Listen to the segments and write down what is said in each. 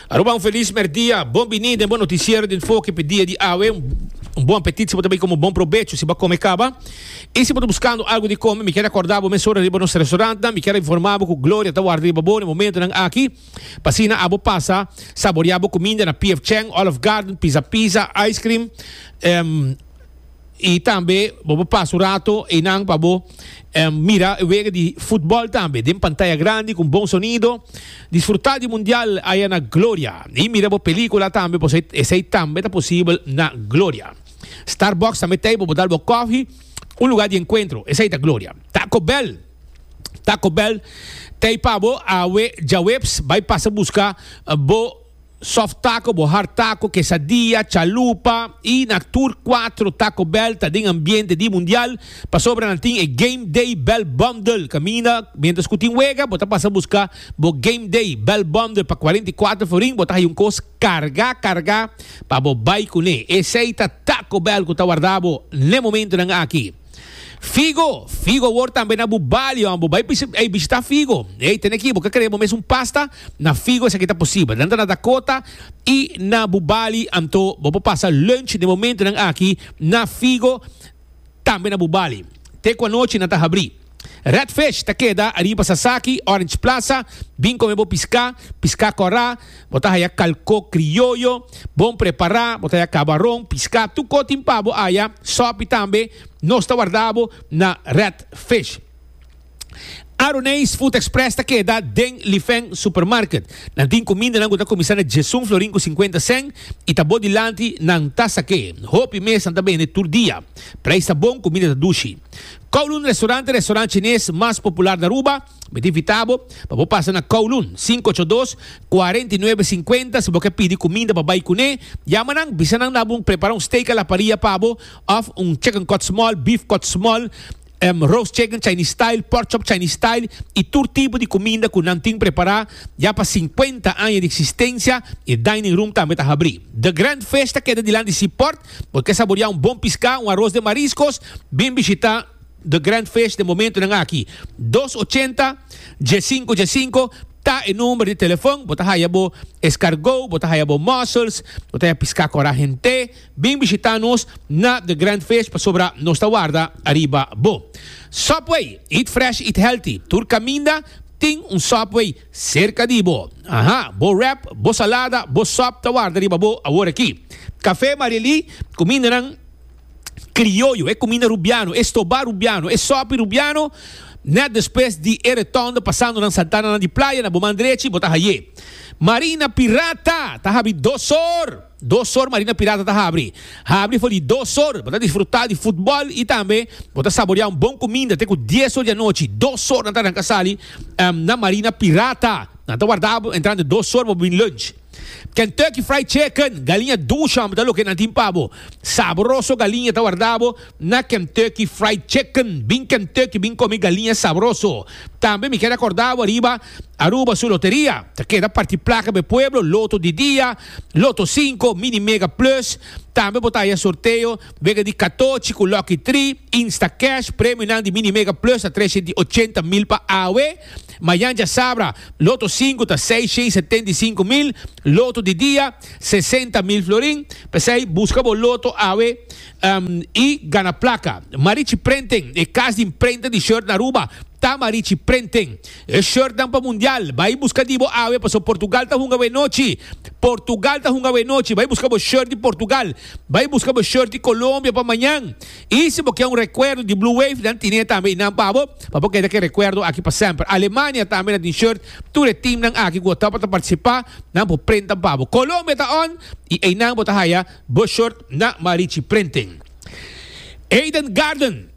Aruba, un feliz merdia. Bon bini den bon noticiero di enfoque pe dia di awe. Un bon apetit si bo ta bay como bon provecho si bo come caba. Y si bo ta buscando algo di come, mi kier recorda bo mesora riba nos restaurant nan. Mi kier informa bo cu Gloria ta warda riba bo na e momentonan aki. Pa asina abo pasa saborea bo cuminda na P.F. Chang, Olive Garden, Pizza Pizza, Ice Cream. Y tambe bo por pasa un rato eynan pa bo mira e wega di futbol tambe den pantaya grandi con bon sonido. Disfruta di Mundial aya na Gloria y mira bo pelicula tambe por esey tambe ta posibel na Gloria. Starbucks tambe ta ey pa bo dal bo coffee. Un lugar di encuentro esey ta Gloria. Taco Bell, Taco Bell ta ey pa bo awe djaweps bay pasa busca bo. Soft taco, bo hard taco, quesadilla, chalupa y na tur cuatro Taco Bell ta den ambiente di Mundial. Pasobra nan tin e Game Day Bell Bundle. Caminda mientras cu tin wega, bo ta pasa busca bo Game Day Bell Bundle pa cuarenta y cuatro forin. Bo ta hayo un cos carga carga pa bo bay cune. Esey ta Taco Bell cu ta warda bo n'e momentonan aki. Figo, Figo wor tambe na bu balio an bo bai ey bishita Figo. Ey tene ki bo ka kere bo mes un pasta na Figo esaki ta posibel. Nan ta na Dakota y na bu bali anto bo por pasa lunch den momentonan aki na Figo tambe na bu bali. Te ku anochi nan ta habri. Red Fish ta keda ariba Sasaki, Orange Plaza, bin come bo pisca, pisca kora, Bo ta haya kalkó krioyo, bon prepará, bo ta haya kabaron, piská, tur kos tin pa bo haya, sòpi tambe, nos ta warda bo na Red Fish. Aroneis Food Express ta keda den Lifeng Supermarket. Nan tin kumindanan ku ta kuminsá na djesun florin ku sinkuenta sèn i ta bo dilanti nan ta sak'é. Hopi mesnan ta bende tur dia. Preis ta bon, kuminda ta dushi. Kowloon Restaurante, restorant chines mas popular na Aruba. Mi ta invitá bo pa bo pasa na Kowloon, sinku ocho dos, kuarenta i nuebe sinkuenta. Si bo ke pidi kuminda pa bai kuné, yama nan, bisa nan na bo prepara un steak a la paria pa bo, òf un chicken kòt smòl, beef kòt smòl, roast chicken Chinese style, pork chop Chinese style i tur tipo di kuminda ku nan tin prepará. Ya pa sinkuenta aña di eksistensia e dining room tambe ta habrí. The Grand Fish ta keda dilanti Seaport. Bo ke saboriá un bon piská, un aros den mariskos? Bin bishitá. The Grand Fish den momentonan aki. Dos ochenta, dje sinku dje sinku ta e number di telefon. Bo ta haya bo eskargó, bo ta haya bo mussels, bo ta haya piská kòrá hent'é. Bin bishitá nos na The Grand Fish pasobra nos ta warda ariba bo. Subway, eat fresh, eat healthy. Tur kaminda tin un Subway serka di bo. Aha, bo wrap, bo salada, bo sòp ta warda riba bo aworakí. Café Marieli, kumindanan. Krioyo, e kuminda rubiano, e stobá rubiano, e sòpi rubiano, nèt despues di e retòndo pasando nan Santana nan di playa, na bo man drechi bo ta hayé Marina Pirata ta habri dos or, dos or Marina Pirata ta habri, habri for di dos or, bo ta disfrutá di futbòl i tambe bo ta saboreá un bon kuminda te ku dies or di anochi, dos or nan ta ranka sali na Marina Pirata, nan ta warda bo entrante dos or bo bin lunch. Kentucky Fried Chicken, galiña dusham ta loke nan tin pa bo. Sabroso galiña ta warda bo na Kentucky Fried Chicken. Bin Kentucky bin komi galiña sabroso. Tambe mi keda korda bo ariba Aruba su loteria. Ta keda parti plaka pa e pueblo, loto di dia, loto sinku, mini mega plus. Tambe bo ta haya sorteo wega di katochi ku lucky tri, instacash. Premionan di mini mega plus ta trece di ochenta mil pa awe. Mayan dja sabra, loto sinku ta seis shen setenta i sinku mil, loto di dia sesenta mil florin, p'esei buska bo loto awe i gana plaka. Marichi Prenten, e kas di imprenta di short na Aruba ta Marichi Prenten. E shortnan pa mundial, bai buska di bo awe paso Portugal ta hunga awe nochi. Portugal ta hunga awe nochi, bai buska bo short di Portugal, bai buska bo short di Colombia pa mañan. Y si bo ke un recuerdo di Blue Wave, nan tine tambe y nan pa bo, pa bo keda ke recuerdo aki pa semper. Alemania tambe na tin shirt, tur e teamnan aki cu a tapa ta participa, nan por prentan pa bo. Colombia ta on y eynan bo ta haya bo shirt na Marichi Printing. Eden Garden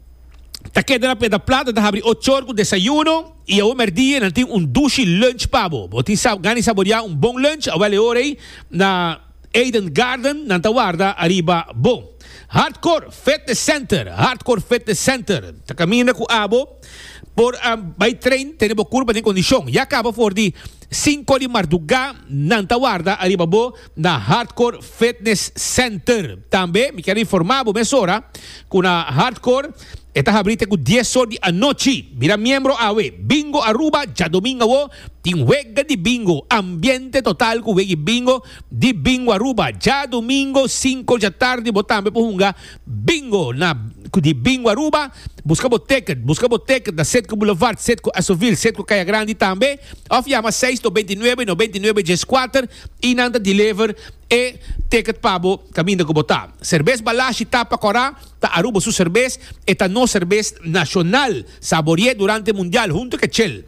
ta keda na Pedra Plata, ta habri ochor cu desayuno y awe merdie nan tin un dushi lunch pa bo. Bo tin sa gana di saborea un bon lunch, awel e ora ey na. Eden Garden nan ta warda ariba bo. Hardcore Fitness Center, Hardcore Fitness Center, ta caminda cu abo por a bay train tene bo curpa den condicion. Ya caba for di cinco di marduga nan ta warda ariba bo na Hardcore Fitness Center. Tambe mi quiero informa bo mesora cu na Hardcore E ta habri te ku dies or di anochi. Mira miembro awe. Bingo Aruba djadomingu awo tin wega di bingo. Ambiente total ku wegi bingo di Bingo Aruba. Djadomingo sinku dja tardi bo tambe por hunga bingo na di Bingo Aruba. Buska bo teket. Buska bo teket na Setku Boulevard, Setku Asovil, Setku Kaya Grandi tambe of yama seis nobenta i nuebe nobenta i nuebe djes kuater i nan ta deliver e teket pa bo kaminda ku bo ta. Serbes Balashi Tapa Kora. Ta Aruba su serbes, e ta nos serbes nacional, sabori'e durante mundial hunto ke Chel.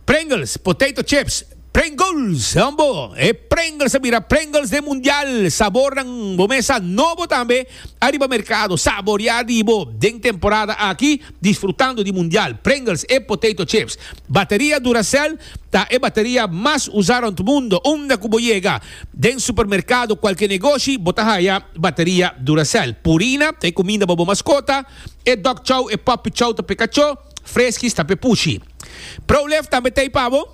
Pringles, potato chips, Pringles, hombo! E Pringles a bira Pringles den mundial, sabornan bo mesa nobo tambe ariba mercado, saboria di bo den temporada aki disfrutando di mundial, Pringles e potato chips. Bateria Duracell ta e bateria mas usa rond mundo unda ku bo yega. Den supermerkado kualke negoshi bo ta haya bateria Duracell, purina ta e kuminda pa bo maskota, e dog chow, e puppy chow ta p'e kachó, Friskies ta p'e pushi. Prolift tambe t'ei pa bo?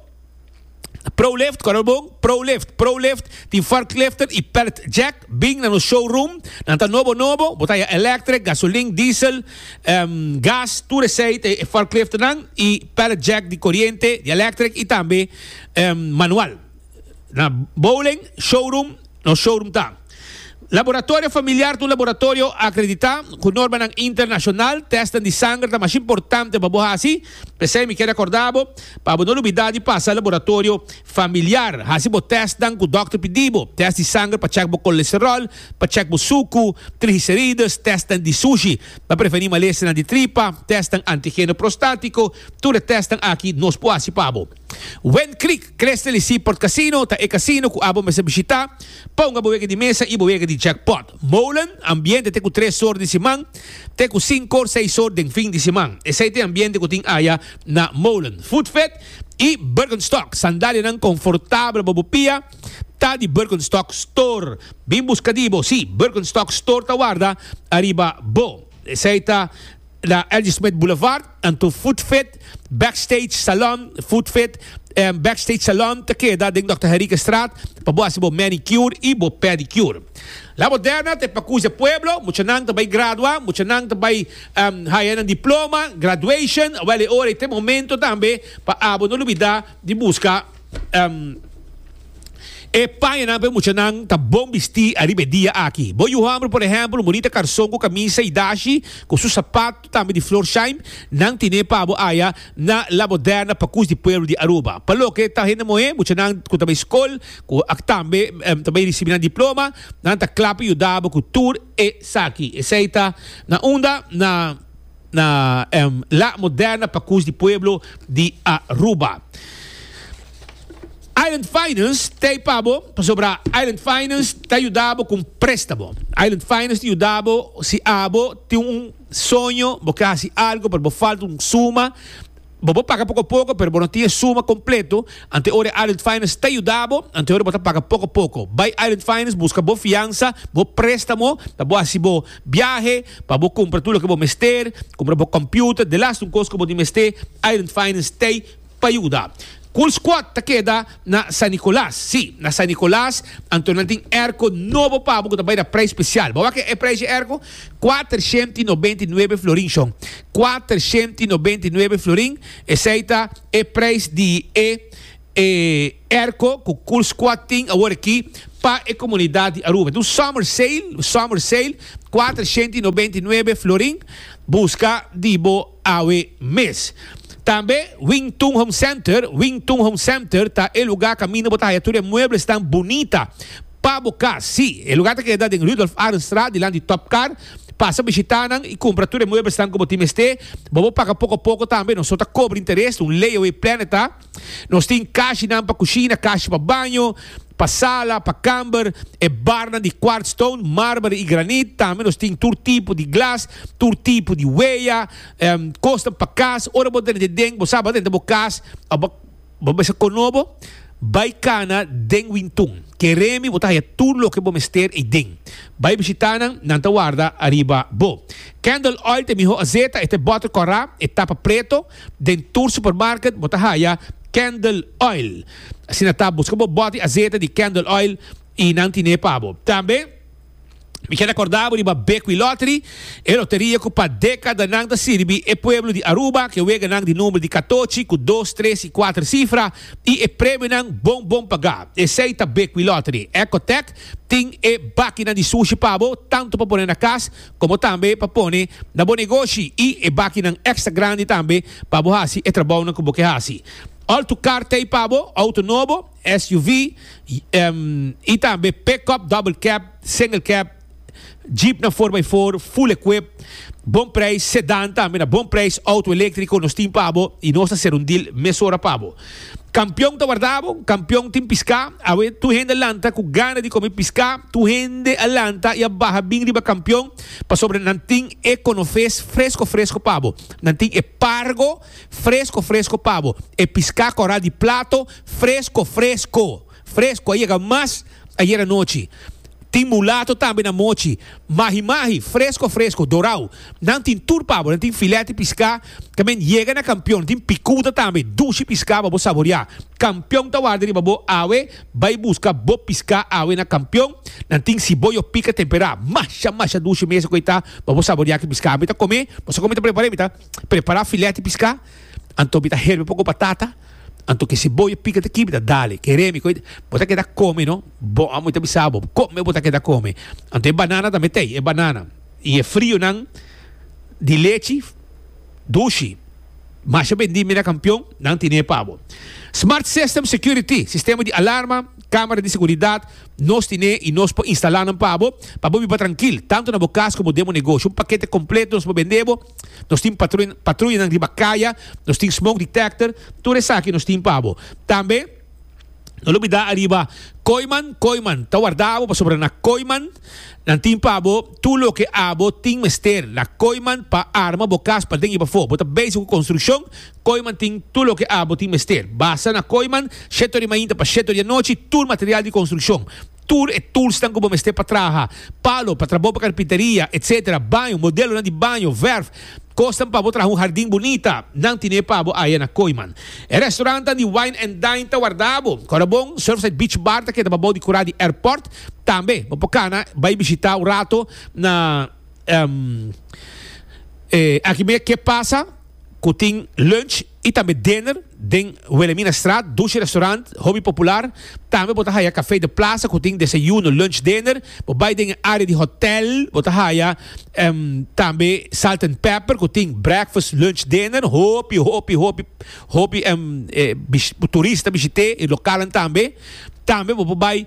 Prolift, kòrda bon, Prolift, Prolift, tin forklifter i pallet jack bin na nos showroom, nan ta nobo nobo, bo ta haya electric, gasolin, diesel, em, gas, tur esei t'ei e forklifternan i pallet jack di koriente, di electric i tambe, em, manual. Na bowling, showroom, nos showroom ta. Laboratorio familiar ta un laboratorio akreditá ku normanan internashonal. Tèstnan di sanger ta mas importante pa bo hasi. P'esei mi ke rekordá bo pa bo no lubidá di pasa laboratorio familiar. Hasi bo tèstnan ku dòkter pidi bo. Tèst di sanger pa chèk bo kolesteròl, pa chèk bo suku, trigiserides, tèstnan di sushi pa prevenir malestarnan di tripa, tèstnan antigeno prostátiko. Tur e tèstnan aki nos por hasi pa bo. Wen Creek Crystal y Seaport Casino ta e casino cu abo mester bishita pa hunga bo wega di mesa y bo wega di jackpot. Molen ambiente te cu tres or di siman te cu sincor seis or den fin di siman. Esey t'e ambiente cu tin aya na Molen. Food Fit y Birkenstock sandalianan confortabel bo bo pia ta di Birkenstock Store. Bin busca di bo si Birkenstock Store ta warda ariba bo. Esey ta na Ladysmith Boulevard, anto Food Fit, Backstage Salon, Food Fit en Backstage Salon ta keda den Dòkter Henriquestraat pa bo hasi bo manicure i bo pedicure. La Moderna ta e pakus di e pueblo, muchanan ta bai gradua, muchanan ta bai haya nan diploma, graduation, awel e ora i ta e momento tambe pa abo no lubida di buska E pañanan p'e muchanan ta bon bistí ariba e dia aki. Bo yu hòmber, por ehèmpel, murita karson ku kamisa i dashi ku su sapatu tambe di flor shaim, nan tin'é pa bo aya na La Moderna pa kus di pueblo di Aruba. Pa loke ta hende mo'é, muchanan ku ta bai skol ku aki tambe ta bai risibi nan diploma, nan ta kla pa yuda bo ku tur esaki. Esei ta na unda na. na La Moderna pa Cus di Pueblo di Aruba. Island Finance ta ei pa bo, pasobra Island Finance ta yuda bo con prestamo. Island Finance ta yuda bo si abo tin un soño, bo ke hasi algo pero bo falta un suma, Bo por paga poko poko, pero bo no tin e suma kompleto. Ante ora Island Finance ta yuda bo, ante ora bo ta paga poko poko. Bai Island Finance buska bo fiansa, bo préstamo, pa bo hasi bo biahe, pa bo kumpra tur loke bo mester, kumpra bo kòmpiuter, de last un kos ku bo tin mester, Island Finance t'ei pa yuda. Cool Squad ta keda Na San Nicolas, sí, na San Nicolas, anto nan tin erko nobo pabo cu ta bay na prijs special. Bo wak e prijs di e erko? Kuater shent i nobent i nuebe florin, shon. Kuater shent i nobent i nuebe florin, esey ta e prijs di e e erko cu Cool Squad tin awor aki pa e comunidad di Aruba. Enton, summer sale, summer sale, kuater shent i nobent i nuebe florin, busca di bo. awe mes. Tambe Wing Tun Home Center, Wing Tun Home Center ta e luga kaminda bo ta haya tur e mueblesnan bunita pa bo kas. Sí, e luga ta keda den Rudolf Arendstraat dilant di Top Car. Pasa bishita nan i kumpra tur e mueblesnan ku bo tin mester. Bo por paga poko poko tambe, nos no ta kobra interes, ta un layaway plan e ta. Nos tin kashinan pa kushina, kashi pa baño, pa sala, pa kamber, e barnan di kwart stone, marber i granit. Tambe nos tin tur tipo di glas, tur tipo di weya, em, kosnan pa kas. Ora bo drenta den, bo sa bo drenta bo kas, a bo bo mester kono bo, bai kana den wintun. Keremi bo ta haya tur loke bo mester ei den. Bai bishita nan, nan ta warda ariba bo. Candle oil ta e miho azeta, e ta e bòter kòrá, e tapa preto. Den tur supermarket bo ta haya Candle Oil. Asina ta, buska bo boti asete di Candle Oil y nan tine pa bo. Tambe mi keda corda bo riba Bequi Lottery, e loteria cu pa decadanan ta sirbi e pueblo di Aruba cu e weganan di number di catochi cu dos, tres y cuater cifra y e premionan bon bon paga. Esey ta Bequi Lottery. Ecotec tin e bakinan di sushi pa bo, tanto pa pone na cas, komo tambe pa pone na bo negoshi i e bakinan èkstra grandi tambe pa bo hasi e trabounan ku bo ke hasi. Òltu kar t'ei pa bo, outo nobo, SUV, i tambe pickup, double cab, single cab, jeepnan four by four, full equip, bon preis, sedan tambe na bon preis, outo eléktriko, nos tin pa bo i nos ta ser un deal mesora pa bo. Kampion ta warda bo, kampion tin piská, awe tur hende a lanta ku gana di kome piská, tur hende a lanta i a baha bin riba kampion pasobra nan tin e konofes fresko fresko pa bo, nan tin e pargo fresko fresko pa bo, e piská kòrá di plato fresko fresko. Fresco a yega mas ayer anochi. Tin mulato tambe na mochi. Mahi mahi, fresco fresco, dorao. Nan tin tur pa bo, nan tin filet di pisca, ta men yega na Campeon, tin picuda tambe, dushi pisca pa bo saboria. Campeon ta warda riba bo awe, bay busca bo pisca awe na Campeon, nan tin ciboyo pica tempera, masha masha dushi mester cu e ta pa bo saboria aki pisca. Mi ta come, bo sa cu mi ta prepara? Mi ta prepara filet di pisca, anto mi ta herbi poco batata. Anto ke si bo e pika ta kibida, dale. Ke remi koe bo ta keda kome, no? Bo, amo ta bisa bo, kome bo ta keda kome. Anto e banana tambe t'ei, e banana i e frionan di lechi dushi, masha bendi Mirakampion, nan tine pa bo. Smart System Security, sistema di alarma, kamera di seguridat, nos tine i nos por instalá nan pa bo, pa bo biba trankil, tantu na bo kas komo den bo negosio. Un pakete kompleto nos por bende bo. Nos tin patruyanan riba kaya, nos tin smoke detector, tur esaki nos tin pa bo. Tambe no lubida ariba koiman, koiman ta warda abo pasobra na koiman nan tin pa bo tur loke abo tin mester. Na koiman pa arma bo kas paden i pafó. Bo ta bezi ku konstrukshon, koiman tin tur loke abo tin mester. Basa na koiman, sheto di mainta pa sheto di anochi, tur material di konstrukshon. Tur e toolsnan ku bo mester pa traha, palo pa trabou pa karpinteria, etc. Baño, modelonan di baño, verf, kosnan pa bo traha un hardin bunita, nan tine pa bo aya na Koiman. E restaurantnan di Wine and Dine ta warda bo. Korabon, Surfside Beach Bar ta keda pa bou di kura di airport. Tambe bo por kana bai bishita un rato na e aki mei Ke Pasa ku tin lunch. y tambe dinner den Wilhelmina Straat, Dushi Restaurant, hopi popular. Tambe bo ta haya Café de Plaza cu tin desayuno, lunch, dinner. Bo bay den e area di hotel, bo ta haya tambe Salt and Pepper cu tin breakfast, lunch, dinner. Hopi, hopi, hopi, hopi turista ta bishit'e y localan tambe. Tambe bo por bay.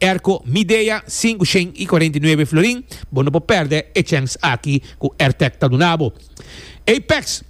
Erco, Midea, sinku shen i cuarenta i nuebe florin, Bo no por perde e chèns aki ku Airtec ta duna bo. Apex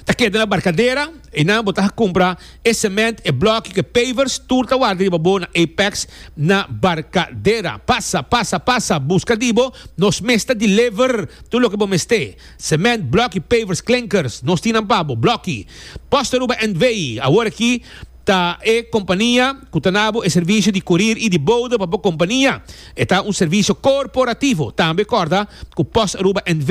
ta keda na Barcadera, einan bo ta haña kumpra e sèmènt, e blòkio ku e pavers, tur ta warda riba bo na Apex na Barcadera. Pasa, pasa, pasa, buska di bo, nos mes ta deliver tur loke bo mester, sèmènt, blòkio, pavers, klinkers, nos tin nan pa bo, blòki. Post Aruba NV, awor aki. Ta e kompania ku ta nabo e servisio di kurir i di bouda pa bo kompania. E ta un servisio korporativo. Tambe kòrda ku Post Aruba NV.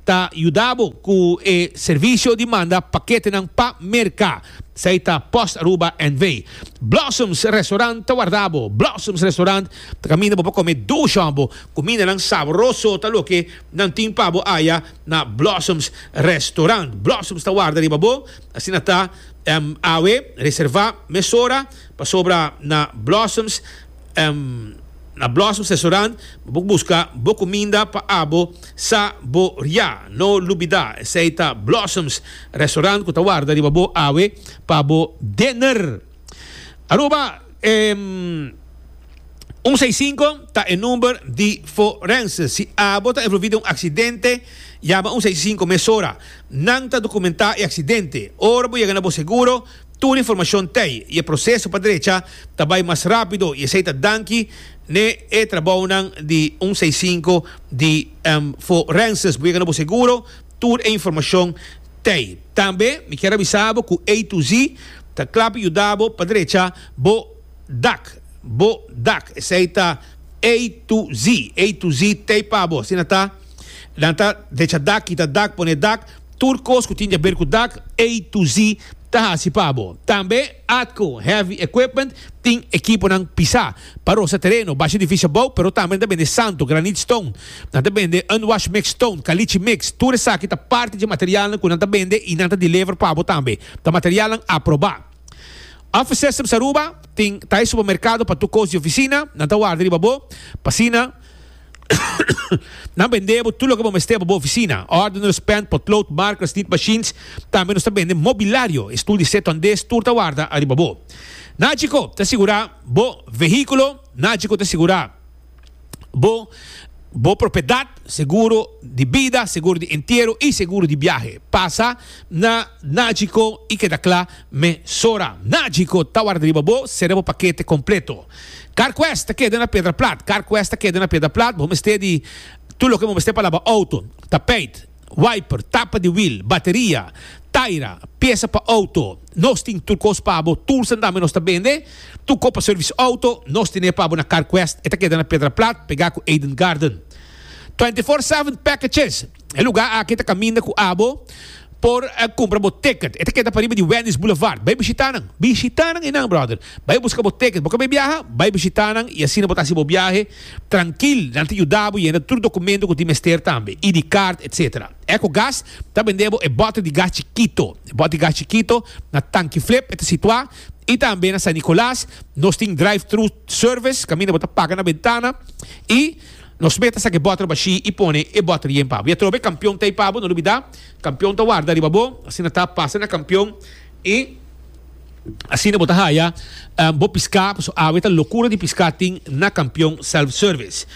ta yuda bo ku e servisio di manda paketenan pa Merka. Esei ta Post Aruba NV. Blossoms Restaurant ta warda bo. Blossoms Restaurant ta kaminda bo pa kome dushon bo. Kumindanan sabroso ta loke nan tin pa bo aya na Blossoms Restaurant. Blossoms ta warda riba bo. Asina ta, em, awe, reserva mesora, pasobra na Blossoms, em, na Blossoms Restaurant bo busca bo cuminda pa abo sa bo ria. No lubida, esey ta Blossoms Restaurant cu ta warda riba bo awe pa bo dinner. Aruba, em, un seis cinco ta e number di forense. Si abo ta envolvi den un accidente, yama un seis cinco mesora. Nan ta dokumentá e aksidente. Ora bo yega na bo seguro, tur informashon t'ei i e proseso pa drecha ta bai mas rápido i esei ta danki n'e e trabounan di un seis sinku di Forenses. Bo yega na bo seguro, tur e informashon t'ei. Tambe mi kier avisá bo ku A to Z ta kla pa yuda bo pa drecha bo dak, bo dak. Esei ta A to Z, A to Z t'ei pa bo. Asina ta. Nan ta decha dak, kita dak, pone dak, tur kos ku tin di aber ku dak, A to Z, ta hasi pa bo. Tambe Atco Heavy Equipment tin ekiponan pisá pa rosa tereno, basha edifisio abou, pero tambe nan ta bende santo, granit stone, nan ta bende unwashed mix stone, kalichi mix, tur esaki ta parti dje materialnan ku nan ta bende i nan ta deliver pa bo tambe, ta materialnan aprobá. Office Systems Aruba tin Thai Supermercado pa tur kos di ofisina, nan ta warda riba bo, pa asina. Nan bende bo tur loke bo mester pa bo oficina, ordeners, pen, potlood, markers, nit machines. Tambe nos ta bende mobilario, e stoel di seto andes tur ta warda ariba bo. Nagico ta sigura bo vehiculo, Nagico ta sigura bo bo propiedad, seguro di bida, seguro di entiero y seguro di biahe. Pasa na Nagico y keda cla mesora. Nagico ta warda riba bo, sera bo pakete completo. Carquest ta keda na Pedra Plat. Carquest ta keda na Pedra Plat. Bo mester di tur loke bo mester palabra auto, tapijt, wiper, tapa di wiel, bateria, taira, piesa pa auto. Nos tin tur kos pa bo. Tur sa dame nos ta bende. Tur kos pa servicio auto nos tene pa bo na Carquest. E ta keda na Pedra Plat pega ku Eden Garden. Twenty Four Seven Packages. E lugar aki ta caminda cu abo por cumpra bo ticket. E ta keda pariba di Wendy's Boulevard. Bay bishita nan. Bishita nan y nan, brother. Bay busca bo ticket. Bo cabe biaha? Bay bishita nan y asina bo ta haci bo biahe trankil. Nan ta yuda bo yenda tur documento cu tin mester tambe, ID card, etc. Ecogas ta bende bo e bote di gas chikito. E bote di gas chikito na Tanki Flip e ta situa y tambe na San Nicolas nos tin drive-thru service caminda bo ta paga na bentana y. Nos meta sa ke bòter bashí i pone e bòter yen pabo. I atroba e kampion t'ei pabo, no lubidá, kampion ta warda riba bo, asina ta pasa na kampion i asina bo ta haya bo piská, paso awe ta lokura di piská tin na kampion self-service.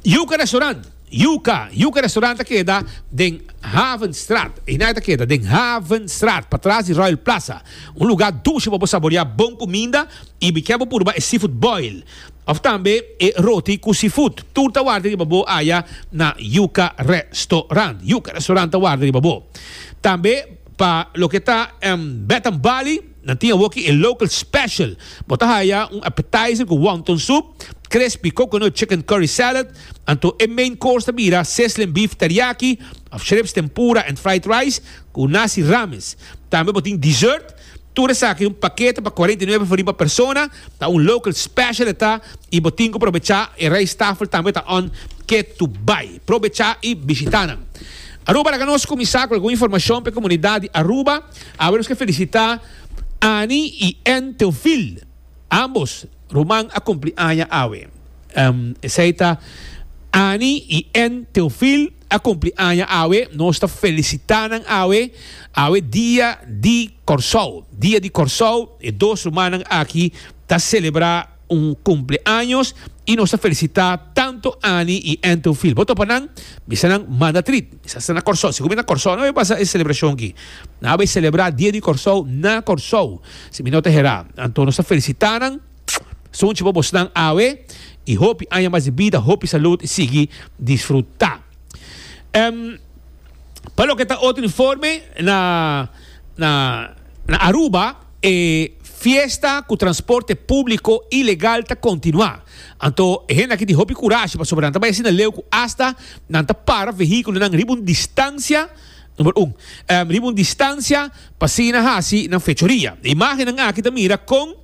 Yuka Restaurant, Yuka, Yuka Restaurant ta keda den Havenstraat, eina ta keda den Havenstraat, patras di Royal Plaza, un lugá dushi pa bo saboreá bon kuminda i bik'é bo purba e seafood boil. Of tambe e roti ku sifut. Tur ta warda riba bo aya na Yuka Restorant. Yuka Restorant ta warda riba bo. Tambe pa loke ta Bath and Bali nan tin awoki e Local Special. Bo ta haya un appetizer ku wonton soep, crispy coconut chicken curry salad. Anto e main course ta bira sizzling beef teriyaki of shrimps tempura and fried rice ku nasi rames. Tambe bo tin dessert. Tur esaki un pakete pa cuarenta y nuebe for riba persona, ta un local special e ta y bo tin cu probecha, e rijsttafel tambe ta on ke to buy. Probecha y bishita nan. Aruba laga nos cuminsa cu algun informacion p'e comunidad di Aruba. Awe nos ke felicita Annie y Ann Theophil. Ambos ruman a cumpli aña awe. Esey ta Annie y Ann Theophil. a cumpli aña awe, nos ta felicita nan awe, awe dia di Corsou, dia di Corsou, e dos ruman nan aki ta celebra un cumpli años y nos ta felicita tanto Anny y Antonfiel, bo topa nan, bisa nan manda trip, bisa sa na Corsou, si cu mi na Corsou no a bay pasa e celebracion aki, nan a bay celebra dia di Corsou na Corsou, si mi no ta hera, anto nos ta felicita nan. Sunchi pa bosnan awe y hopi aña mas di bida, hopi salud y sigui disfruta. Em pa loke ta otro informe na na na Aruba e fiesta cu transporte publico ilegal ta continua. Anto e hende aki tin hopi curashi pasobra nan ta bay asina leu cu hasta nan ta para vehiculonan riba un distancia Number un, riba un distancia pa sigui na haci nan fechoria. E imagennan aki ta mira con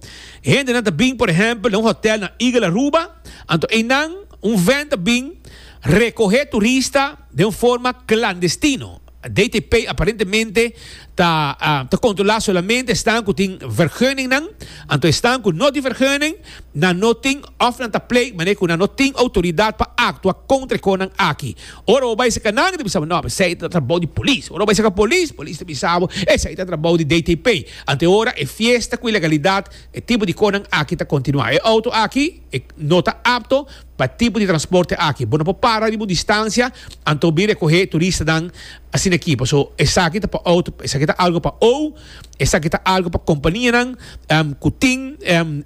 hendenan ta bin por ehempel na un hotel na Eagle Aruba, anto eynan un ven ta bin recohe turista den un forma clandestino. DTP aparentemente ta ta controla solamente esnan cu tin verguningnan, anto esnan cu no tin verguning, Nan no tin òf nan ta plei manera ku nan no tin outoridat pa aktua kontra e konan aki. Ora bo bai serka nan, e ta bisa bo, No, esei ta trabou di polis. Ora bo bai serka polis, polis ta bisa bo, Esei ta trabou di DTP. Anto ora e fiesta ku ilegalidat, e tipo di konan aki ta kontinuá. E outo aki e no ta apto pa e tipo di transporte aki. Bo no por para riba un distansia anto bin rekohé turistanan asin'aki. Paso esaki ta pa outo, esaki ta algu pa ou. Esaki ta algu pa kompanianan ku tin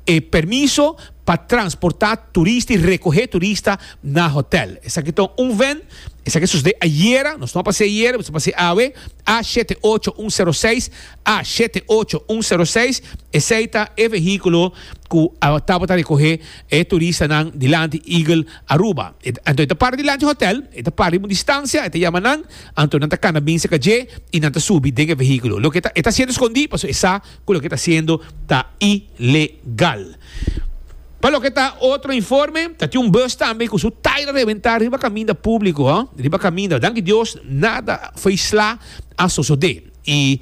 e permiso pa transportá turista i rekohé turista na hotèl. Esaki ta un ven, esaki a sosodé ayera, nos no a pas'é ayera, nos a pas'é awe, A shete ocho un sero seis, A shete ocho un sero seis, esei ta e vehíkulo ku a tabata rekohé e turistanan dilanti Eagle Aruba. Anto e ta para dilanti hotèl, e ta para riba un distansia, e ta yama nan, Anto nan ta kana bin cerca dje y nan ta subi den e vehiculo. Loke e ta haciendo escondi pasobra e sa cu loke e ta haciendo ta ilegal. Pa loke ta otro informe, ta tin un bus tambe cu su taira rebenta riba caminda publico, riba caminda. Danki Dios nada faisla a sosode y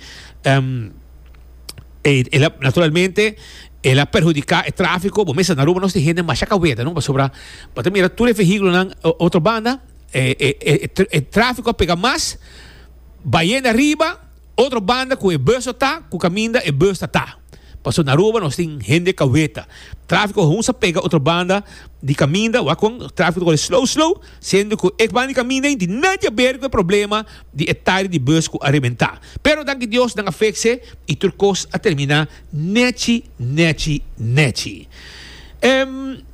el a naturalmente el a perhudica e trafico. Bo mes a na Aruba nos tin hende masha caweta no pasobra bo ta mira tur e vehiculonan otro banda. e, e, e, e tráfiko a pega mas, bayenda riba, otro banda ku e bus ta, ku kaminda e bus ta ta. Paso na Aruba nos tin hende kaweta. Tráfiko a hunsa pega otro banda di kaminda, wak kon tráfiko ta kore slow slow, siendo ku e banda di kaminda ei di nadje a ber ku e problema di e tire di bus ku a rebentá. Pero danki Dios nan a fekse i tur kos a terminá nechi nechi nechi. Ehm.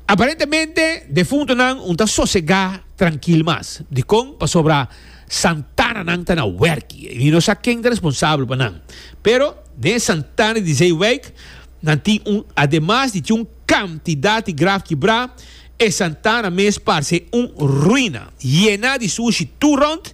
Aparentemente, defuntonan un ta sosegá trankil mas. Dikon? Pasobra santananan ta na wèrki i mi no sa ken ta responsabel pa nan. Pero, den e santana di Zeewijk, nan tin un, ademas di tin un kantidat di graf kibrá, e santana mes parse un ruina, yená di sushi tur rònt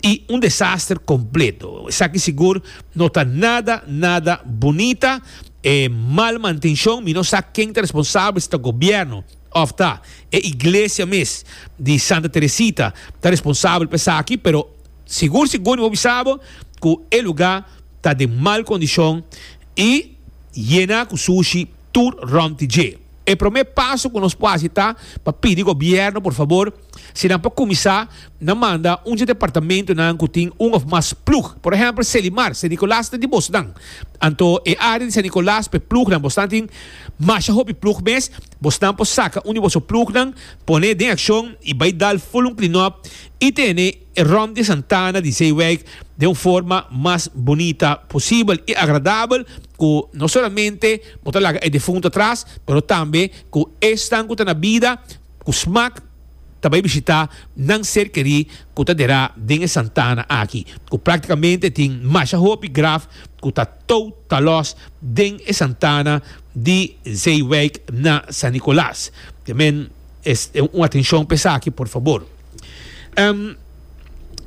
i un desaster kompleto. Esaki sigur no ta nada nada bunita. E mal mantenshon, mi no sa ken ta responsabel si ta gobièrnu òf ta e iglesia mes di Santa Teresita ta responsabel pa esaki, pero sigur sigur mi por bisa bo ku e lugá ta den mal kondishon i yena ku sushi tur rònt dje. E promé paso ku nos por hasi ta pa pidi gobièrnu por fabor Si nan por kuminsá, nan manda un dje departamentunan ku tin un òf mas plug. Por ehèmpel, Selimar, Sen Nikolas ta di bosnan. Anto e área di Sen Nikolas pa e plugnan bosnan tin masha hopi plug mes. Bosnan por saka un di boso plugnan, pon'é den akshon i bai dal ful un klinòp i tene e ròm di Santana di Zeewijk den un forma mas bunita posibel i agradabel ku no solamente bo ta laga e defuntu atras pero tambe ku esnan ku ta na bida ku smak ta bai bishitá nan ser kerí ku ta derá den e Santana aki, ku práktikamente tin masha hopi graf ku ta tou ta lòs den e Santana di Zeewijk na San Nicolaas. Te men es un atenshon pa esaki por fabor.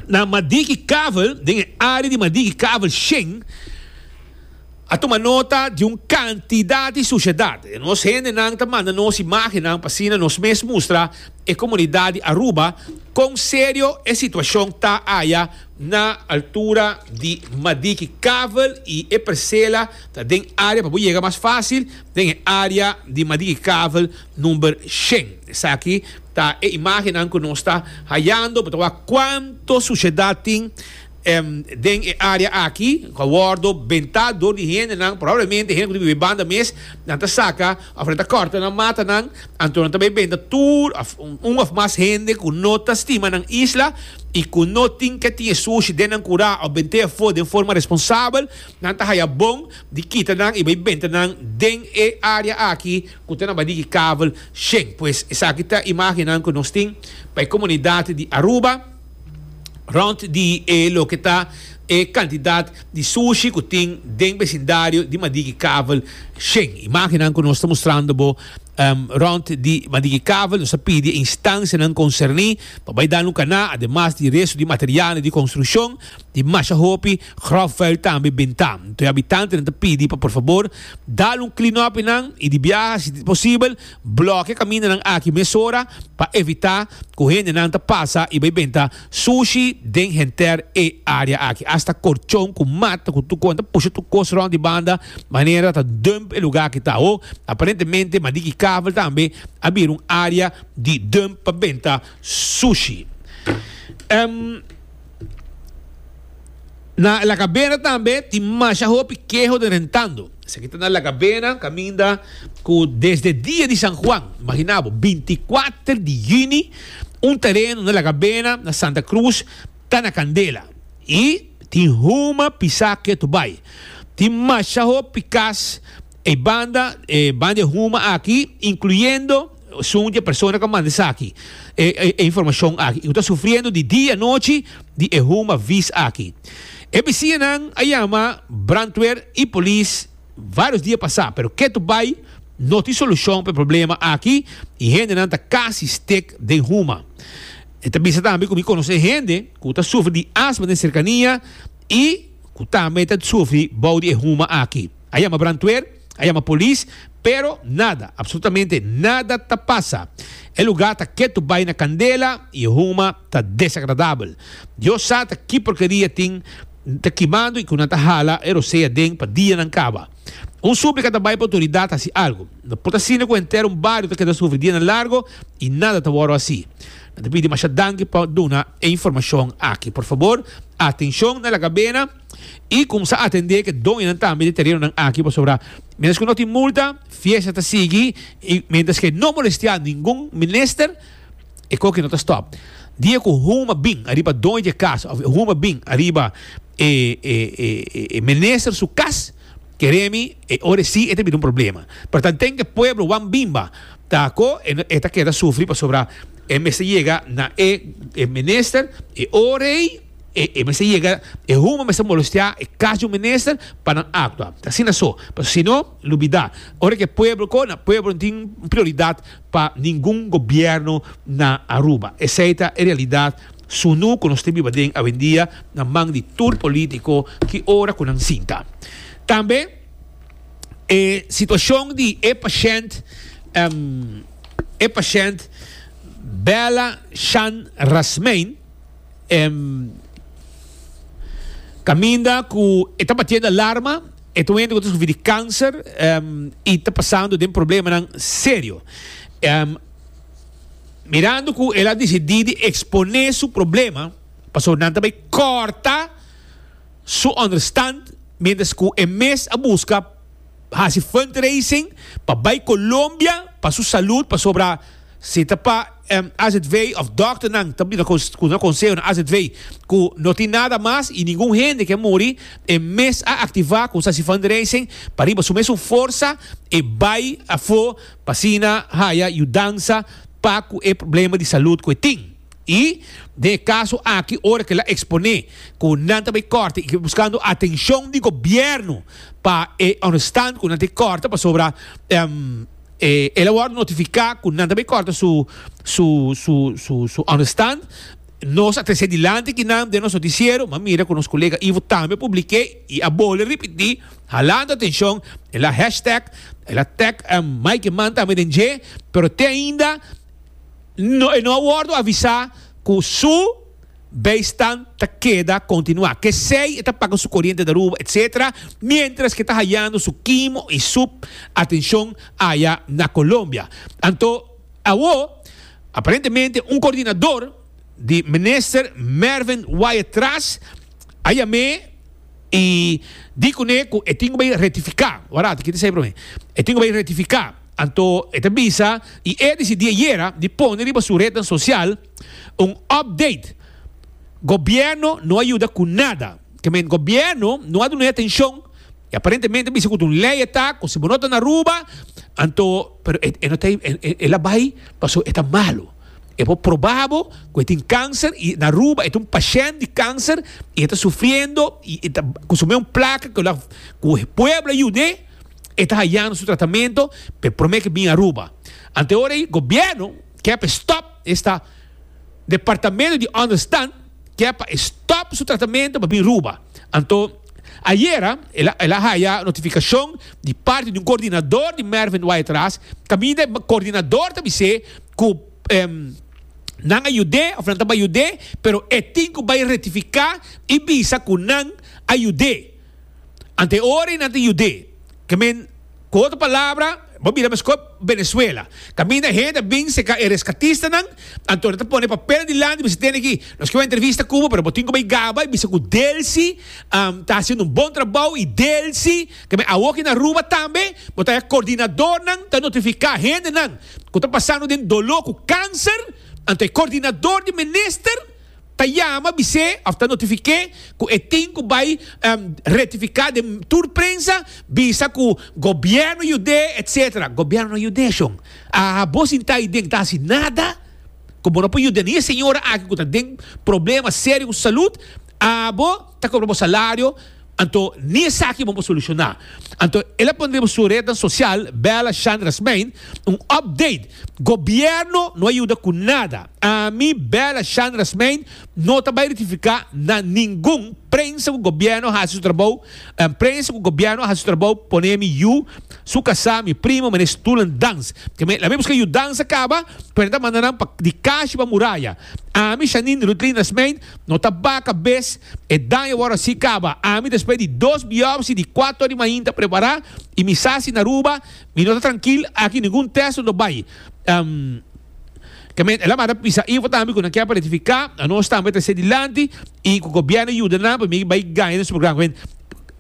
Na Madiki Kavel, den e área di Madiki Kavel Sheng, a tuma nota di un kantidat di sushedat. Nos hendenan ta manda nos imágennan pa asina nos mes mustra e komunidat di Aruba kon serio e situashon ta aya na altura di Madiki. Kavel i e Persela ta den área pa bo yega mas fásil den e área di Madiki Kavel number shen. Esaki ta e imágennan ku nos ta hayando pa ta wak kuantu sushedat tin. Den e área aki ku a wòrdu bentá dor di hendenan, probablemente hende ku ta biba banda mes, nan ta saka òf nan ta kòrta nan matanan. Anto nan ta bai benta tur òf un òf mas hende ku no ta stima nan isla i ku no tin ke tin e sushi den nan kurá òf bent'é afó den forma responsabel. Nan ta haya bon di kita nan i bai benta nan den e área aki ku ta na badiki kabel. Shen, pues, esaki ta imágennan ku nos tin pa e komunidat di Aruba. Rond di e loke ta e kantidat di sushi ku tin den besindario di Madiki Kavel Shen. Imágennan ku nos ta mustrando bo rond di Madiki Kavel. Nos ta pidi e instansianan konserní pa bai dal un kaná ademas di restu di materialnan di konstrukshon di masha hopi gròfvuil tambe bintá. Anto e abitantenan ta pidi pa por fabor dal un klinòp nan i di biaha si ta posibel. Blòk'e kamindanan aki mesora pa evitá ku hendenan ta pasa i bai benta sushi den henter e área aki. Asta korchon ku mat ku tur kon ta pusha tur kos rònt di banda manera ta dump e lugá aki ta hoog. Aparentemente Madiki Kavel tambe a bira un área di dump pa benta sushi. Na La Cabena tambe tin masha hopi keho den rentando. Esaki ta na La Cabena, kaminda ku desde dia di San Juan, imagina bo, 24 di yuni, un tereno na La Cabena, na Santa Cruz, ta na kandela. I tin huma pisá ketu bai. Tin masha hopi kas ei banda, e banda di huma aki, inkluyendo, Sun dje persona ku a manda esaki, e e informashon aki, i ku ta sufriendo di dia anochi di e huma vis aki. E besiñanan a yama brandweer i polis varios dia pasá, pero ketu bai no tin solushon pa e problema aki i hendenan ta kasi stik den huma. E ta bisa tambe ku mi konosé hende ku ta sufri di asma den serkania i ku tambe ta sufri bou di e huma aki, a yama brandweer. A yama polis, pero nada, absolutamente nada ta pasa. E lugá ta ketu bai na kandela i e huma ta desagradabel. Dios sa ta ki porkeria tin ta kimando i ku nan ta hala e rosé aden pa dianan kaba. Un súplika ta bai pa otoridat hasi algu. No por ta asina ku henter un bario ta keda sufri dianan largu i nada ta wòrdu hasi. Nan ta pidi masha danki pa duna e informashon aki. Por fabor, atenshon na La Gabena. y cumsa atende ke doñonan tambe di terenonan aki pasobra mientras ku no tin multa fiesta ta sigui y mientras ke no molestia ningun minister e koki no ta stop dia ku huma bin ariba doño di e kas of huma bin ariba e e minister su kas keremi e ora si e ta bira un problema pero ta den ke pueblo wan bin ba ta ko e ta keda sufri pasobra e mester yega na e minister e ora ei E e mester yega e human mester molestea e cas di un minister pa nan actua ta asina so paso sino lo bida ora ke pueblo ko na pueblo no tin prioridad pa ningun gobierno na Aruba esey ta e realidad sunu ku nos ta biba den awendia na man di tur politico ki ora ku nan sinta tambe e situacion di e pashent e pashent Bella Shan Rasmein. em caminda cu e ta batiendo alarma e ta wende cu ta sufri di cancer em y ta pasando den problemanan serio em mirando cu el a decidi di expone su problema pasobra nan ta bay corta su understand mientras cu e mes a busca haci fundraising pa bay Colombia pa su salud pasobra si ta pa AZV of dòkternan ta bini ku nan konseho na AZV ku no tin nada mas i ningun hende ke muri. E mes a aktivá Konsasi Fundraising pa riba su mesun forsa e bai afó pa asina haya yudansa pa ku e problema di salud ku e tin. I den e kaso aki ora ke el a eksponé ku nan ta bai kòrta i ke buskando atenshon di gobièrnu pa e understand ku nan ta e kòrta pasobra. E el a wòrdu notifiká ku nan ta bai kòrta su su su su su ònderstand. Nos a tres'é dilanti di nan den nos notisiero, m'a mira ku nos kolega Ivo tambe a publik'é i a bole ripití, halando atenshon. El a hashtag, el a tag Mike Mann tambe den dje, pero te ainda e no a wòrdu avisá ku su. Bijstand ta keda continua, kesey e ta paga su coriente d'Aruba etc. Mientras ke ta hayando su kimo y sup atencion aya na Colombia. Anto awo aparentemente un coordinador di Minister Mervin Wyatt Tras a yam'e y di cune cu e tin cu bay rectifica. Warato kiti esey prome. E tin cu bay rectifica. Anto e ta bisa y e a dicidi ayera di pone riba su rednan social. Un update, Gobierno no a yuda cu nada. Ke men Gobierno no a duna e atencion, e aparentemente bisa cu ta un ley e ta, cu si bo no ta na Aruba, anto, pero e e no ta e la bay pasobra e ta malo. E por proba bo cu e tin cancer y na Aruba e ta un pashent di cancer y e ta sufriendo y e ta consumé un placa cu la cu pueblo a yud'é, e ta hayando su tratamento, p'e prome cu e bin Aruba. Anto e ora ey Gobierno. Kè pa e stòp esta departamento di ònderstand, kè pa e stòp su tratamento pa bin Ruba. Anto, ayera el a haya notifikashon di parti di un koordinador di Mervin Wyatt Ras, kaminda e koordinador ta bis'é ku nan a yud'é òf nan ta bai yud'é, pero e tin ku bai rektifiká i bisa ku nan a yud'é. Anto e ora ei nan ta yud'é. Ku otro palabra, bo mira mescor Venezuela. Caminda hende a bin seca e rescatistanan, anto nan ta pone papel dilanti, mi sa tene aki, nos kiba entrevista cu bo, pero bo tin cu bay gaba y bisa cu Delcy ta haciendo un bon trabao y Delcy ta bay awoki na Aruba tambe, bo ta e coordinadornan ta notifica hendenan cu ta pasando den dolo cu cancer, anto e coordinador di minister. Ta yama, bis'é of ta notifiké ku e tin ku bai retifiká den tur prensa, bisa ku gobièrnu yud'é, etc. Gobièrnu no yud'é shon. A bo sintá ahi den ta hasi nada ku bo no por yud'é ni e señora aki ku ta den problema serio ku su salud. A bo ta kobra bo salario. Anto ni esaki bo por soluciona. Anto el a pone riba su rednan social, Bella Shandra Smein, un update, Gobierno no a yuda cu nada. Ami, Bella Shandra Smein, no ta bay rectifica na ningun prensa cu Gobierno a haci su trabou, prensa cu Gobierno a haci su trabou pone mi yu, su casa, mi primo, meneer Stulan Dans. Keme, lamen busca yudansa caba, pero nan ta manda nan pa di cashi pa muraya. Ami, Shanin Ruthlina Smein, No ta baca bes, e daño wor así caba. Ami despues di dos biopsi di cuato ori mainta prepará y mi sa si na Aruba mi no ta trankil aki ningun test no bay. Kemey el a manda pisa info tambe cu nan kier pa rectifica a nos tambe ta ser dilanti y cu gobierno yuda nan pa mi bay gaña den su programa.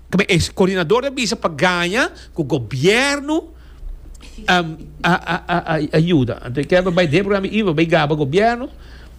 Kemey e coordinador ta bisa pa gaña cu gobierno a yuda. Anto e kier pa bay den programa info pa bay gaba gobierno.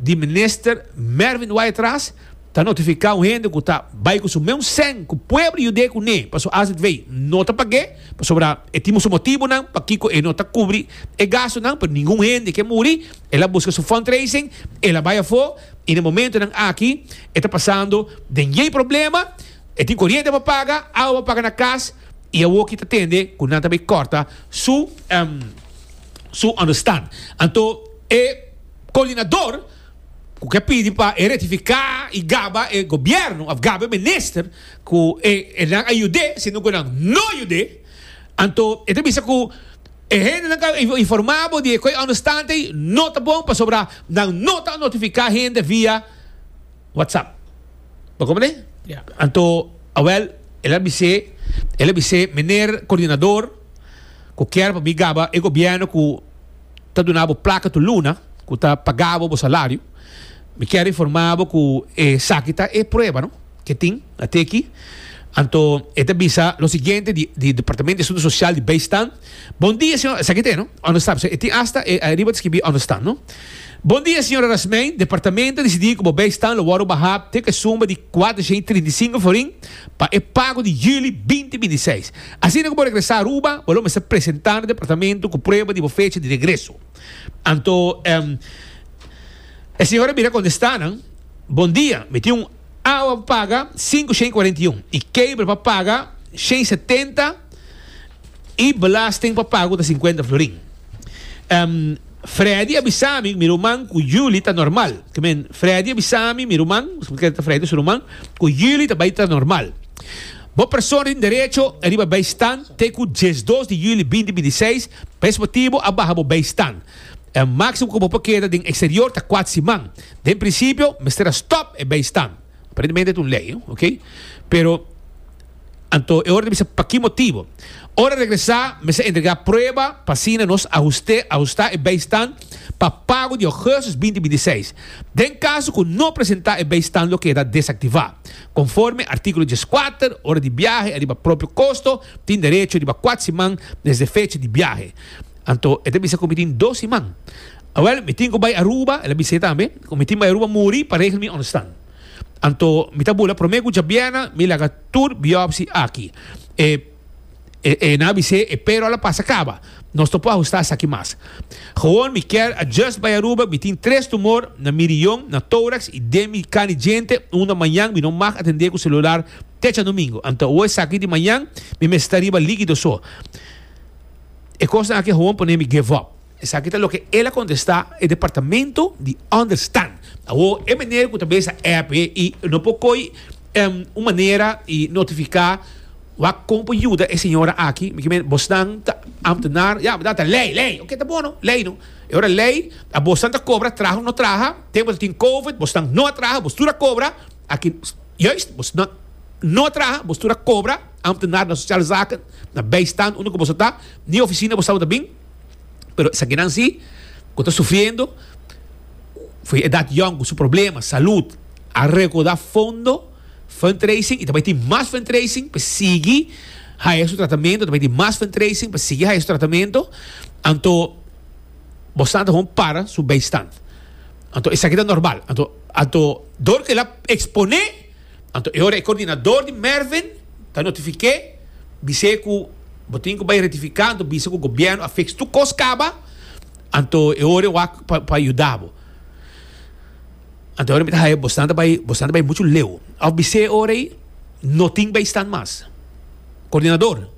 di minister Mervin Waitras ta notifica un hende cu ta bay cu su meun seng cu pueblo yude cu ne pa su azv no ta page pasobra e tin su motibonan pakico e no ta cubri e gastonan pero ningun hende ke muri el a busca su fundraising el a bay afo y na momentonan aki e ta pasando den yey problema e tin coriente pa paga awa pa paga na cas y awo aki ta tende cu nan ta bay corta su su understand anto e. koordinador ku ke pidi pa e retifiká i gaba e gobièrnu òf gaba e minister ku e nan a yud'é sino ku nan no yud'é. Anto e ta bisa ku e hendenan ku a informá bo di e kue understand ei no ta bon pasobra nan no ta notifiká hende via whatsapp. Bo komprendé? Anto awèl el a bis'é el a bis'é, Meneer koordinador, ku kier pa mi gaba e gobièrnu ku. ta duna bo plaka tur luna ku ta paga bo bo salario. Mi kier informa bo ku esaki ta e prueba no ke tin ate aki. Anto e ta bisa lo siguiente di di Departamento di Asunto Sosial di Beistan, Bon dia señor, esaki ta e no, understand, pasobra e tin asta ariba ta skibi understand no. Bon dia señor Arasmein, Departamento a disidi ku bo beistan lo wòrdu baha te ku e suma di kuatrocientos y trinta y sinku florin pa e pago di yüli binti binti seis. Asina ku bo regresá Aruba, bo lo mester presentá na departamento ku prueba di bo fecha di regreso. Anto e señor a mira konde sta nan, Bondia, mi tin un awa pa paga sinku shen kuarenta i un i kebel pa paga shen setenta i belasting pa pagu ta sinkuenta florin. Freddy a bisa mi, mi ruman, ku juli ta normal. Ke men, Freddy a bisa mi, mi ruman, pasobra ke ta Freddy su ruman, ku juli ta bai ta normal. Bo persona tin derecho riba bijstand te ku diesdos di juli binti binti i seis, pa es motibu a baha bo bijstand. E máksimo ku bo por keda den eksterior ta kuat siman. Den prinsipio mester a stòp e bijstand. Aparentemente ta un lei, ok. Pero anto e ora ta bisa pa ki motibu. Ora regresá mester a entregá prueba pa asina nos ahust'é ahustá e bijstand pa pago di ògùstus binti binti i seis. Den kaso ku no presentá e bijstand lo keda desaktivá. Conforme artículo dieskuater, ora di biahe a riba propio costo, tin derecho riba kuat siman desde fecha di biahe. Anto e ta bisa cu mi tin dos siman. Awel, mi tin cu bay Aruba, el a bisa e tambe, cu mi tin bay Aruba muri pa regel mi understand. Anto mi ta bula prome cu djabiena mi laga tur biopsy aki. E. E, e nan a bis'é, e pero a la pasa kaba. Nos ta por ahustá esaki mas. Gewoon mi kèr a just bai Aruba, mi tin tres tumor, na mi riyon, na tórax i den mi kan di djente, unda mañan mi no mag atendé ku selular te djanumingu. Anto awe esaki di mañan mi mester riba líkido so. E kosnan aki gewoon pon'é mi give up. Esaki ta loke el a kontestá e departamento di Understand. Awor e meneer ku ta bes a app i no por koi un manera i notifiká wak kon por yuda e señora aki. Mi kimen bosnan ta ambtenaar, ya bardad ta lei, lei. Oke ta bono, lei no. E ora lei a bosnan ta kobra traha òf no traha, te bo ta tin covid bosnan no a traha bos tur a kobra, aki juist bosnan no a traha bos tur a kobra, ambtenaar na sosiale zaken, na bijstand unda ku boso ta, ni ofisina bos tabata bin. pero esakinan si ku ta sufriendo for edat yòn ku su problema salud a rekoda fondo fundraising y ta bai tin mas fundraising pa sigui haya su tratamento ta bai tin mas fundraising pa sigui haya su tratamento anto bo sa ta kon para su beistan anto esaki ta normal anto anto dor kila expone. Anto e ora e kordinador di Mervyn ta notifiké, bis'é ku bo tin ku bai rektifiká, anto bisa ku gobièrnu a fiks tur kos kaba, anto e ora e wak pa pa yuda bo. Anto e ora mi ta haña bosnan ta bai bosnan ta bai muchu leu. Òf bis'é e ora ei no tin bai stan mas. Kordinador.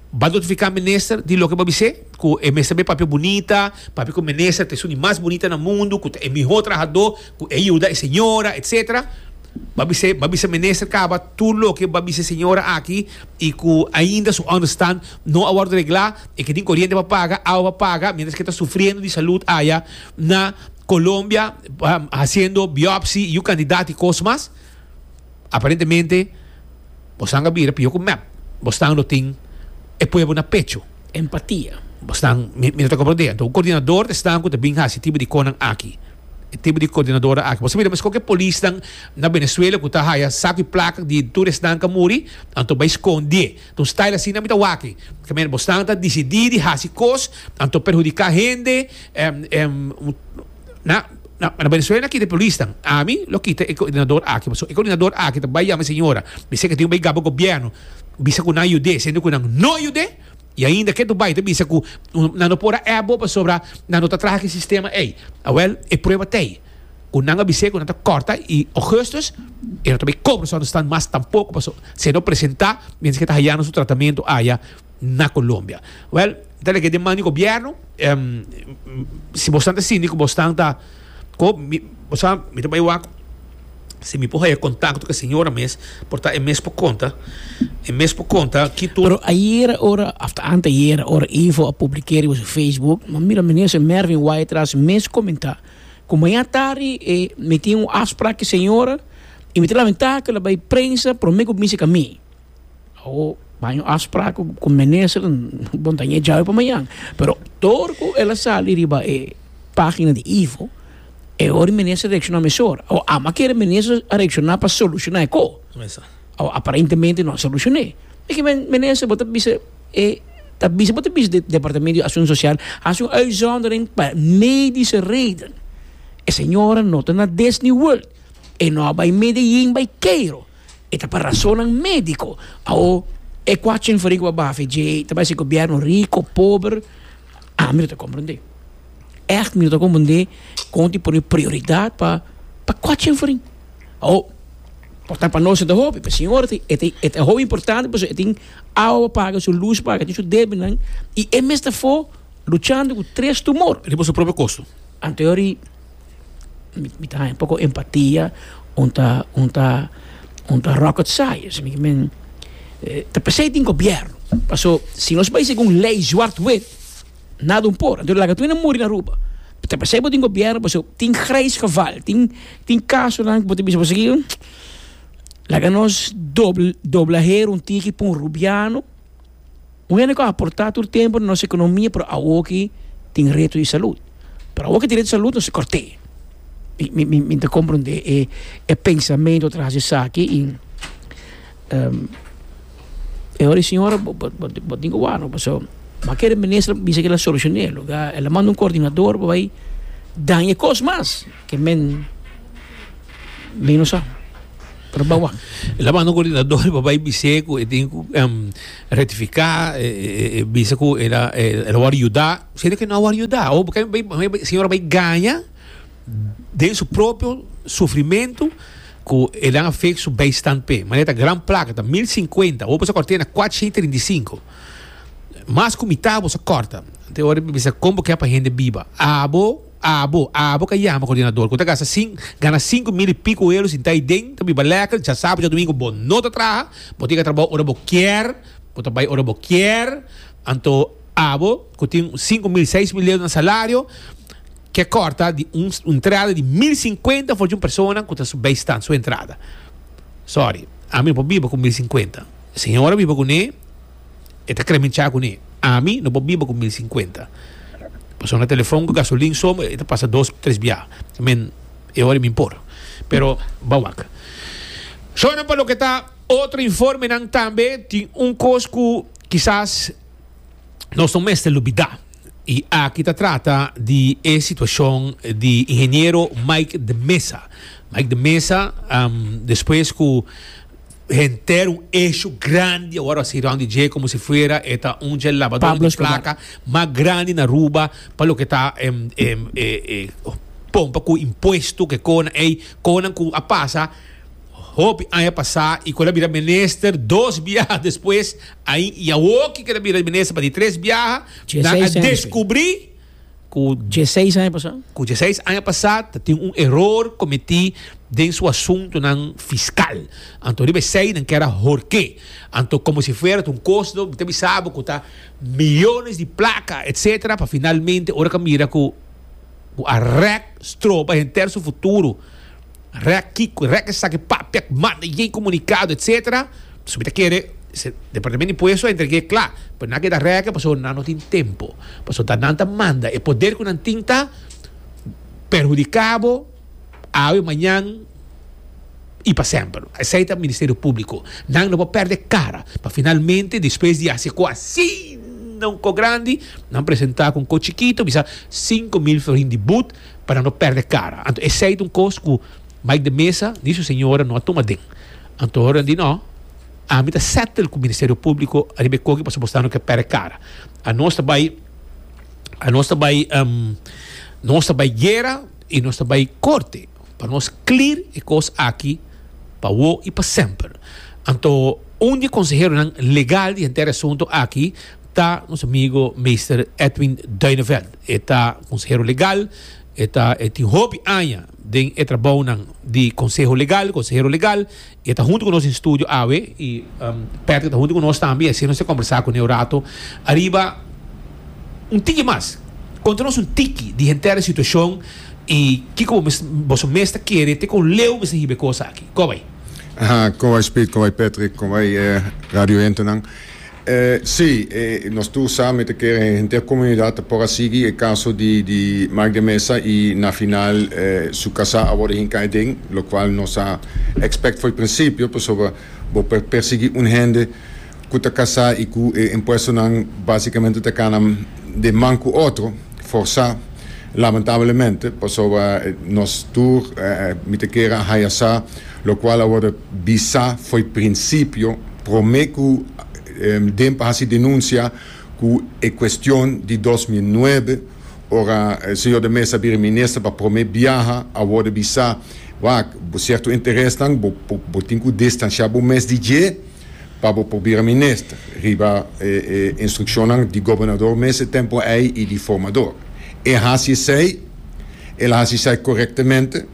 Ba notifiká minister di loke bo a bis'é, ku e mester be papia bunita, papia ku minister ta e suni mas bunita na mundu, ku ta e mihó trahadó, ku e yuda e señora, etsetera. Ba bis'é, ba bisa minister kaba tur loke ba bisa e señora aki i ku ainda su ònderstan no a wòrdu reglá, e ke tin koriente pa paga, awa pa paga, miéntras ke ta sufriendo di salud aya na Colombia, hasiendo biòpsi, yu kandidat i kos mas. Aparentemente bosan a bira pio ku mep bosnan lo tin e pueblo na pecho. Empatia. Bosnan, mi no ta komprendé. Anto un kordinador ta esnan ku ta bin hasi e tipo di konan aki? E tipo di kordinadora aki. Bo sa mira meskof ku e polisnan na Venezuela ku ta haya saku i plaka di tur esnan ku a muri, anto bai skondié. Ta un style asina mi ta wak ei. Ke manera bosnan ta disidí di hasi kos anto perhudiká hende. Na, na, na Venezuela aquí de polis dan. A mi lo kita e coordinador aki. Paso e coordinador aki ta bai llama señora. Mi sé que tin un bai gabo gobierno. Bisa cu nan ayudé, siendo cu nan no ayudé. Y ainda que tu bai ta bisa cu nan no por a ep bo pasobra nan no ta traha ki sistema ey. A wel, e prueba ta ey. Cu nan a bis'é cu nan ta corta y augustus e no ta bay cobro esor no stan mas tampoco paso si e no presenta mientras que ta hayando su tratamento aya. na Colombia. Well, ta leke den man di gobierno, em, si bosan ta sindi ku bostan ta ko mi, bosa mi ta bai wak si mi por haya contacto ku e señora mes por ta e mes por konta, e mes por konta ki tur. Pero ayer ora after anteayer ora Ivo a publikeri bo su Facebook, mi mira minister Mervin Wytras mes komenta ku maña tardi e mi tin un afsprak ku e señora i mi ta lamenta ku el a bai prensa prome ku minsika mi. Awo baño a spra ku minister bon ta ña djawe pa mañan pero dor ku el a sali riba e pagina di ivo e hori minister a reakshoná meshor awo amo a kere minister a reakshoná pa solushoná e ko awo aparentemente no a solushoné e ke minister bo ta bisa e ta bisa bo ta bisa di departamento di akshon sosial hasi un uitzondering pa medische reden e señora no ta na Disney world e no a bai Medellin bai Keiro. E ta pa rasonnan médiko. Awo, e kuachi inferiku pa bafe dje, ta bai si gobièrnu riko, pober, a mi no ta komprendé. Ègt mi no ta komprendé kon tin pone prioridat pa pa kuachi inferin. Awo, por ta pa nos e ta hopi, pa e señora ta e ta e ta hopi importante pasobra e tin awa pa paga, su lus pa paga, e tin su debenan i e mes ta afó luchando ku tres tumor. Riba su propio kostu. Anto e ori mi ta haña poko empatia un ta un ta un ta rocket science mi kimin ta p'esei tin gobierno paso si nos bai según lei zwart wit nada un por anto laga tuwina muri na Aruba ta p'esei bo tin gobierno paso tin grijs geval tin tin casonan ku bo ta bisa bo a sigui laga nos dobla her un tiki p'un rubiano Un hende cu a aporta tur tempo na nos economia pero awoki tin reto di salud. Pero awoki tin reto di salud no si corte. Mi mi ta comprende e e pensamento tras esaki y e hora e señora bo bo bo tin cu wak no paso bo a kere minister a bisa cu el a soluciona e loke el a manda un coordinador pa bay daña e cos mas ke men no sa. Pero bawa, el a manda un coordinador pa bay bisé cu e tin cu em, rectifica, e, e, e, e bisa cu el a, el, el a wor yuda, siendo que no a wor yuda. O porque bay, bay, bay- señor bay gaña den su propio sufrimento cu el a fake su bijstand pe. Manera ta gran placa, ta 1050, o bisa cortena 435. Mas cu mitad bosa corta. Te ora bisa como que pa gente biba. Abo Abo, abo ka yama kordinador ku ta gasta sin gana sinku mil i piko ero sintá ei den ta biba lèker dja sábado dja dumingu bo no ta traha bo tin ka trabou ora bo kier bo ta bai ora bo kier anto abo ku tin sinku mil seis mil ero na salario ke kòrta di un entrada di mil sinkuenta for di un persona ku ta su bei stan su entrada sòri ami no por biba ku mil sinkuenta señora biba kuné E ta kere mi cha kuné, ami no por biba ku mil sinkuenta. Pa sona telefòn ku gasolin so e ta pasa dos, tres biaha. I mean, e ora mi por. Pero ban wak. Shòna pa loke ta otro informenan tambe tin un kos ku kisas nos no mester lubidá. I aki ta trata di e situashon di Ingeniero Mike de Mesa. Mike de Mesa, despues ku Henter un eshu grandi awor a si round di dje komo si fuera e ta un dje labador di plaka mas grandi na Aruba pa loke ta pompa ku impuesto ke kona ei konan ku a pasa hopi aña pasa i ku el a bira minister dos biaha despues ai i awor ki kel a bira minister pa di tres biaha nan a deskubri ku dieseis aña pasá. Ku dieseis aña pasá ta tin un eror kometí den su asuntunan fiskal. Anto riba esei nan keda horké. Anto komo si fuera ta un kos no, mi ta bisa bo ku ta miónes di plaka etsetera pa finalmente ora ka mira ku ku a rèk stroba henter su futuro. Rèk kiko? Rèk esaki papia, manda e komunikado etc. So mi ta kere Departamento di Impuesto a entrega e kla, pero nan a keda rèk pasobra nan no tin tempo, pasobra nan ta manda e poder ku nan tin ta perhudiká bo awe, mañan i pa semper. Esei ta Ministerio Públiko. Nan no por pèrdè kara pa finalmente despues di hasi ago asina un kò grandi, nan presentá ku un kò chikito bisa sinku mil florin di but. para no perde cara. Anto esei ta un cos cu Mike de Meza ni su señora no a tuma den. Anto horan di no, ami ta settle cu Ministerio Publico ariba e coki pasobra bo sa no ke perde cara. Anos ta bay, anos ta bay, um, nos ta bay guera y nos ta bay corte pa nos clear e cos aki pa wo y pa semper. Anto un di e conseheronan legal di henter e asunto aki ta nos amigo Meester Edwin Duineveld. E ta konsehero legal, e ta e tin hopi aña den e trabounan di konseho legal, konsehero legal, i e ta huntu ku nos den studio awe i Patrick ta huntu ku nos tambe i asina nos ta kombersá kuné un ratu ariba un tiki mas. Konta nos un tiki di henter e situashon i kiko bo mes boso mes ta kere te kon leu mester hiba e kos aki. Kobay. Kobay Speed, kobay Patrick, kobay e radiohentenan. Sí, nos tur sa, mi ta kere henter komunidat ta por a sigui e kaso di di Mike de Meza i na final su kasá a wòrdu hinká aden, lokual nos a ekspèkt for e prinsipio, pasobra bo por persiguí un hende ku ta kasá i ku e impuestonan básikamente ta kana den man ku otro, forsá, lamentablemente, pasobra nos tur, mi ta kere a haya sa Locual a wordo bisa fo'i principio prome cu Demp a haci denuncia cu e cuestion di dos mil nuebe, ora Señor de Meza a bira Minister pa prome biaha, a wordo bisa, Wak, bo cierto interesnan bo bo tin cu distancia bo mes di dje pa bo por bira Minister, riba e e instruccionnan di Gobernador mes e tempo ey y di Formador. E haci esey, el a haci esey correctemente.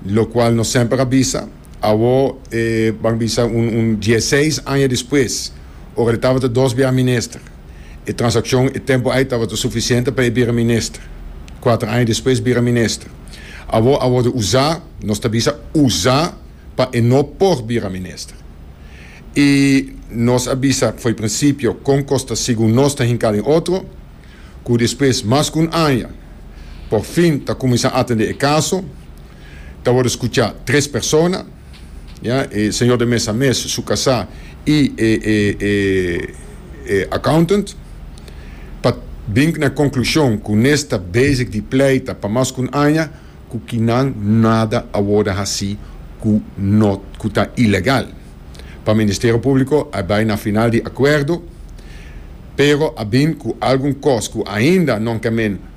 locual nos semper a bisa, awor e ban bisa un un dieseis aña despues, ora e tabata dos biaha minister, e transaccion e tempo ay tabata suficiente pa e bira minister, cuater aña despues bira minister, awor a wordo uza, nos ta bisa uza pa e no por bira minister. Y nos a bisa fo'i principio con cos ta sigun nos ta hinca den otro, ku despues mas ku un aña por fin ta kuminsá atendé e kaso, ta wòrdu skuchá tres persona, ya, e señor de mesa mes, su kasá i e e e e accountant, pa bin na konklushon ku nes ta bezig di pleita pa mas ku un aña ku kinan nada a wòrdu hasí ku no ku ta ilegal. Pa Ministerio Públiko a bai na final di akuerdo, pero a bin ku algun kos ku ainda non ke men